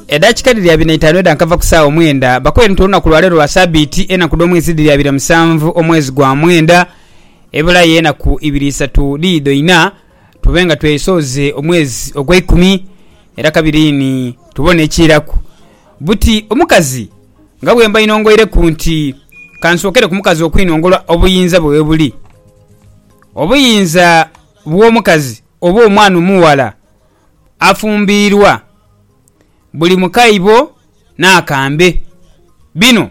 Edakika dhiri abiri naitanu edha nkava ku saawa omwenda bakoye nti olunaku lwaleero lwa sabiiti enaku dhomwezi dhiri abiri musanvu omwezi gwa mwenda ebulayo enaku ibiri isatu dhidho ina tube nga twesooze omwezi ogweikumi era kabiri ni tubone ekiiraku buti omukazi nga bwembainongoireku nti kansookere ku mukazi okwinongola obuyinza bwe webuli obuyinza bwomukazi oba omwana omughala afumbiirwa buli mu kaibo n'akambe. Bino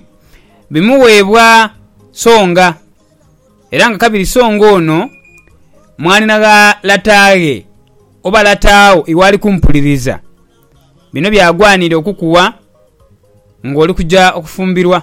bimuweebwa songa, era nga kabiri songa ono mwanhi na gha lata ghe oba lata wo iw'ali kumpuliriza. Bino by'agwanire okukuwa ng'oli kuja okufumbirwa.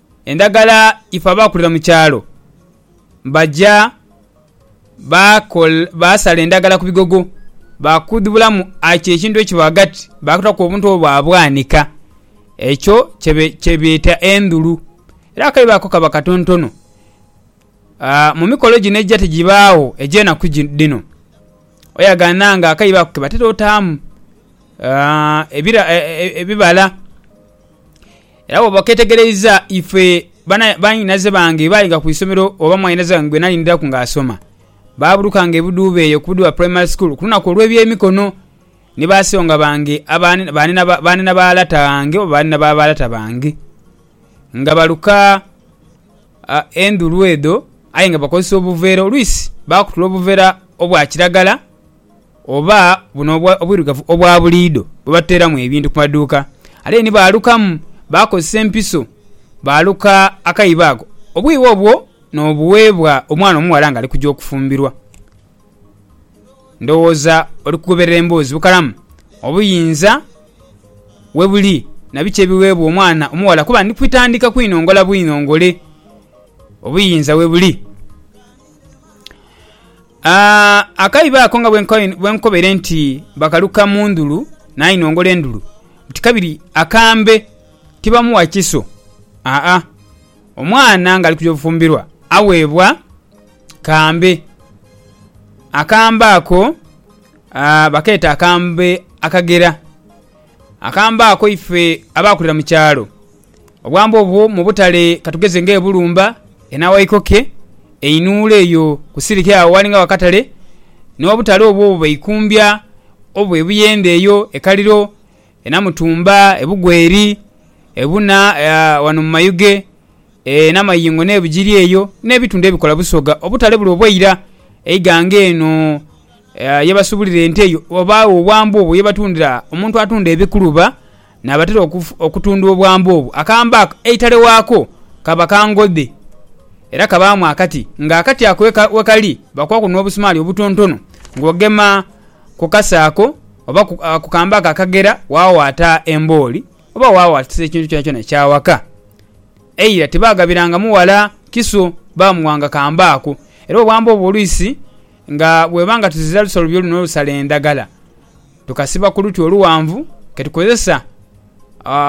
Endagala ife abaakulira mu kyalo baja baasala endagala ku bigogo baakudhubulamu achi ekintu ekiba ghagati baakitaku obuntu obwo baabwanika. Ekyo kyebeeta endhulu. Era akaibo ako kaba katontono. Mu mikolo gino egya tigibaagho egy'enaku dhino, oyagana nga akaibo ako ke batera otaamu ebibala. Era bwooba oketegereiza ife banhinaze bange baayiga ku isomero oba mwanhinaze wange gwe nalindiraku ng'asoma, baaburukanga ebidhuuba eyo ku Budhuba Primary School ku lunaku olw'ebyemikono ni ba songa bange banhina ba lata bange oba banhina ba ba lata bange nga baluka endhulu edho aye nga bakozesa obuveera. Oluisi baakutula obuveera obwa kiragala oba buno obwirugavu obwa buliidho bwe batuteeramu ebintu ku maduuka. Ate ni baalukamu, baakozesa empiso baaluka akaibo ako. Obwibo obwo n'obuweebwa omwana omughala ng'ali kugya okufumbirwa. Ndowooza oli kugoberera emboozi bukalamu. Obuyinza we buli na biki ebiweebwa omwana omughala kuba ndi kwitandhika kwinongola bwinongole obuyinza we buli. Akaibo ako nga bwe nkobaire nti bakaluka mu ndhulu nainongola endhulu nti kabiri akambe tibamuwa kiso, aa, omwana ng'ali kuja obufumbirwa aweebwa. kambe. Akambe ako bakeeta akambe akagera. Akambe ako ife abaakulira mu kyalo obwambe obwo mu butale ka tugeze ng'e Bulumba, e Nawaikoke, e Inuula eyo ku siliki agho aghali nga akatale, n'obutale obwo bwe baikumbya oba e Buyende eyo, e Kaliro, E Namutumba, e Bugweri, e Buna ghano mu Mayuge, e Namayingo n'e Bugiri eyo n'ebitundu ebikola Busoga. Obutale buli obw'eira eighanga eno ye basubulira ente eyo wabaagho obwambe obwo ye batundira omuntu atunda ebikuluba n'abatera okutunda obwambe obwo. Akamba ako eitale waako kaba ka ngodhe era kabaamu akati ng'akati ako we kali bakwaku n'obusumaali obutontono ng'ogema ku kase ako. oba ku kambe ako akagera waawaata embooli, oba waawaatisa ekintu kyonakyona ekya waka. Eira tibaagabiranga mughala kiso, baamuwanga kambe ako. Era bwe bwamba obwo olwisi nga bweba nga tuzira lusolobyo luno olusala endagala, tukasiba ku luti oluwanvu ke tukozesa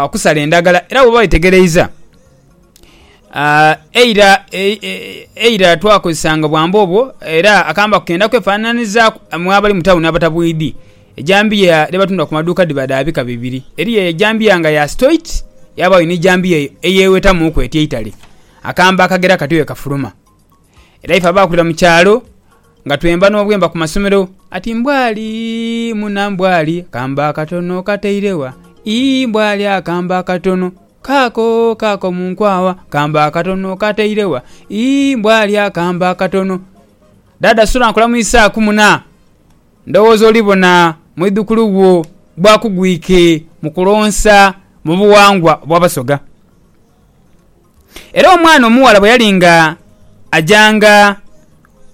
okusala endagala. Era bw'oba wetegereiza. eira eira twakozesanga bwamba obwo era akamba kenda kwefananhizaku mwe abali mu tawuni abatabwidhi, ejambiya dhe batundha ku madhuuka dhiba dha bika bibiri eriyo eyo ejambiya nga ya sitoiti yabayo ni jambiya eyo eyewetamuku eti eitale, akamba akagera kati wekafuluma. Era ife abaakulira mu kyalo nga twemba n'obwemba ku masomero ati Mbwali muna Mbwali akambe akatono okataire wa? Ii Mbwali akambe akatono kaako kaako mu nkwawa akambe akatono okataire wa? Ii Mbwali akambe akatono. Daada sula nkulamuisaaku muna. Ndowooza olibona mwidhukulu wo bwakugwike mu kulonsa mu buwangwa obw'Abasoga. Era omwana omughala bwe yali nga ajanga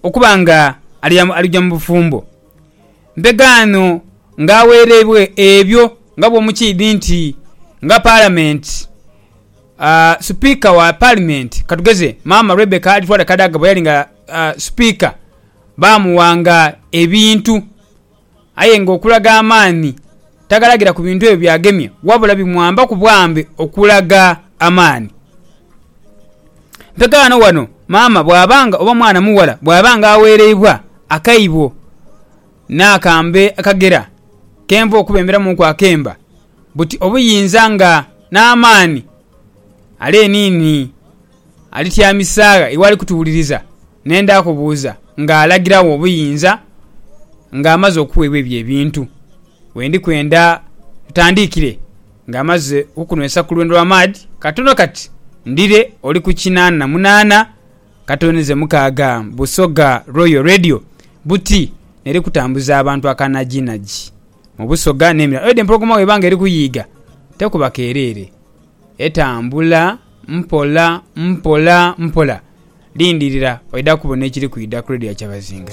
okuba nga alija mu bufumbo, mpegaano nga agheereibwa ebyo nga bwomukiidhi nti nga Palamenti, Sipiika wa Palimenti katugeze maama Rebecca Alitwale Kadaga bwe yali nga Sipiika baamuwanga ebintu. Aye ng'okulaga amaani tagalagira ku bintu ebyo by'agemye, wabula bimwambaku bwambe okulaga amaani. Mpegaano wano maama bw'aba nga oba mwana mughala bw'aba nga aweereibwa akaibo n'akambe akagera k'enva okubemberamuuku akemba, buti obuyinza nga n'amaani ale niini. Alityamisaagha iwe ali kutuwuliriza, ne ndaakubuuza ng'alagiragho obuyinza ng'amaze okuweebwa ebyo ebintu. We ndi kwenda ntandiikire ng'amaze okukunwesa ku lwendo lwa maadhi katono kati, ndhire oli ku kinaana na munaana katooneze mukaaga Busoga Royal Radio buti n'eri kutambuza abantu akanajiinaji mu Busoga n'emirala. Oidhi empologoma bw'eba ng'eri kuyiiga tekuba keereere. Etambula mpola mpola mpola. Lindirira oidha kubona ekiri kwidha ku Radio Kyabazinga.